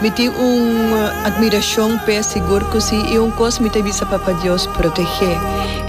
Mi tin un admiracion p'e, sigur cu si. I un cos mi ta bisa Papa Dios protege.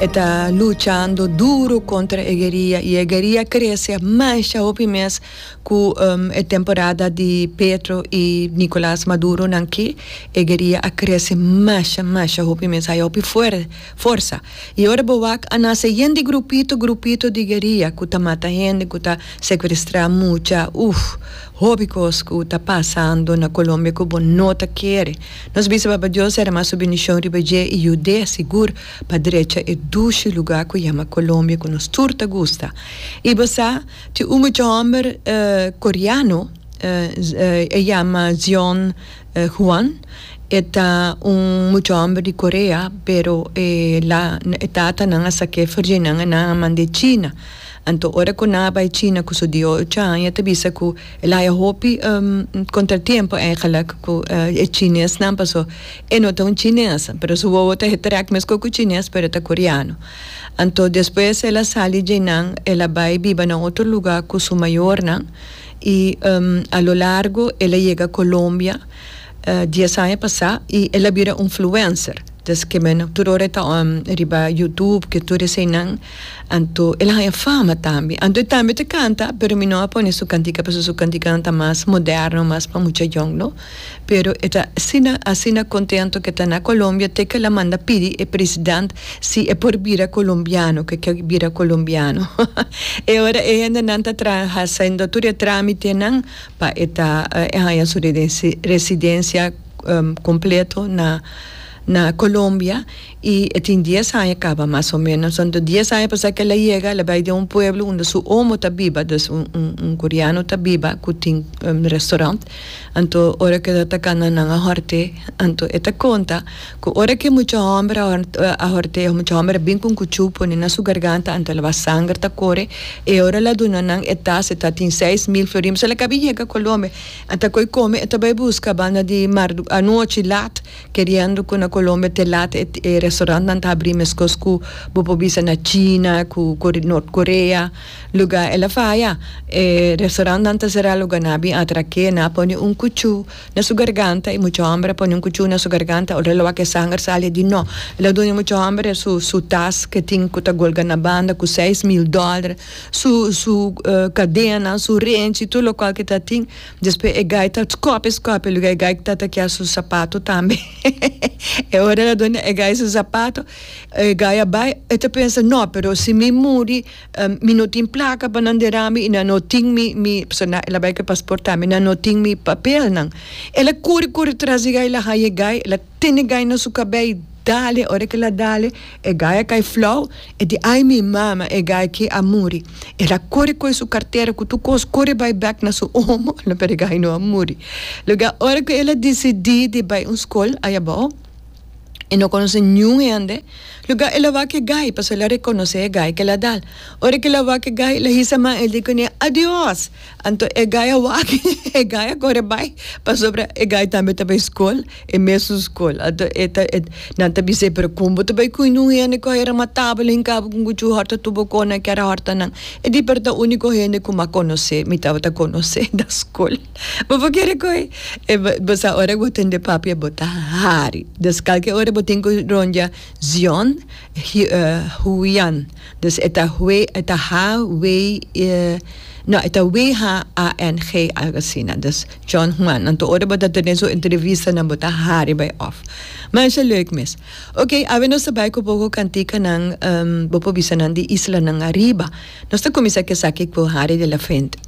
E ta luchando duro contra e gueria i e gueria crece masha hopi mes cu e temporada di Petro i Nicolas Maduro nan aki. E gueria a crece masha, masha hopi mes. Hay hopi forza. I ora bo wak a nace yen di grupito, grupito di gueria cu ta mata hende, cu ta secuestra mucha. Uff. Hopi cos cu ta pasando na Colombia cu bo no ta kere. Nos bisa Papa Dios derama su bendicion riba dje y yud'e sigur pa drecha e dushi lugar cu yama Colombia cu nos tur ta gusta. Y bo sa, tin un mucha homber Coreano, e yama Zion Juan, e ta un mucha homber di Corea pero e tatanan a saca e ferjeinan e nan a mand'e China. Anto ora ku nan a bai China ku su dio Chan e ta bisa ku el a haya hopi kontratiempo eigenlik ku e chinesnan paso e no ta un chines pero su wowo ta hetrek mesku ku chines pero e ta koreano. Anto despues el a sali dje nan el a bai biba na otro luga ku su mayornan i a lo largo el a yega Colombia. Dies aña pasá i el a bira un fluencer. Deske men tur ora e ta riba Youtube ke tur eseinan, anto el a haña fama tambe. Anto e tambe ta kanta, pero mi no a pone su kantika pasobra su kantikanan ta mas moderno, mas pa mucha yòngnan. Pero e ta asina, asina kontento ke ta na Colombia te ke el a manda pidi e president si e por bira colombiano, ke ke bira colombiano. E ora e hendenan ta tra, hasiendo tur e trámitenan. pa e ta e haña su residencia completo na na Colombia y e tin dies aña caba mas o menos enton dies aña pasa que el a yega el a bay den un pueblo unda su omo ta biba dus un un un coreano ta biba cu tin restaurant enton ora que lo ta cana nan a horte enton e ta conta Cu ora cu e mucha homber a a hortea, e mucha homber a bin cu un cuchu pone na su garganta ante laba sanger ta core, e ora la duna nan e tas, e ta tin seis mil florin, mi sa la ca bin yega Colombia, a ta coi come, e ta bay busca banda di mar, anochi laat, keriendo cu na Colombia te laat e e restaurant nan ta habri mescos cu bo por bisa na China, cu Core North Korea, lugar el a faya, e restaurant nan ta cera lugar nan a bin atra ke, nan a pone un cuchu. na su garganta y mucha homber a pone un cuchun na su garganta ora lo wak e sanger sali di no el a duna mucha homber su su tas ke tin ku ta golga na banda ku seis mil dollar su su cadena su renchi tur lo cual ke ta tin despues e guy ta scope scope luga e guy ta ta kia su zapato tambe e ora el a duna e guy su zapato e guy a bay e ta pensa no pero si mi muri Mi no tin plaka pa nan derami i nan no tin mi mi pasobra nan el a bai ku e pasport tambe nan no tin mi papelnan. El a kuri kuri tras di gai, el a haña e gai, el a tene gai na su kabei i dale. Ora ku el a dale e gai a kai flou, e di ai mi mama e gai aki a muri. El a kuri kohe su kartera ku tur kos kuri bai bek na su omo, pero e gai no a muri. Luego ora ku el a disidi di bai un skol ahi abou. E no conoce niun hende, lugar el a wak e gai, paso el a reconoce e gai kel a dal. Ora kel a wak e gai, el a hisa man, el di cune, Adios! Anto e gai a wak, e gai a core bay, pasobra e gai tambe ta bay scol, e mesun scol. Anto e ta, e, nan ta bis'é, pero con bo ta bay cui nun hende cu a era matabel, hincabel con cuchu horta tu boconan, kera hortanan? E di, pero ta unico hende cu m'a conoce, mi tabata conoce, da scol. Bo por kere ku e bo sa ora ku bo tende papia bo ta hari. Des kalke ora bo tin ku ronja Zion Huian. Des e ta Hue e ta ha wei no e ta we ha a en ge algu asina. Des John Huan. Nan tur ora bo ta tene su entrevistanan bo ta hari bai òf. Masha leuk mes. Oke awe nos ta bai ku poko kantikanan bo por bisa nan di islanan ariba. Nos ta kuminsá ku esaki ku Hari de la Fuente.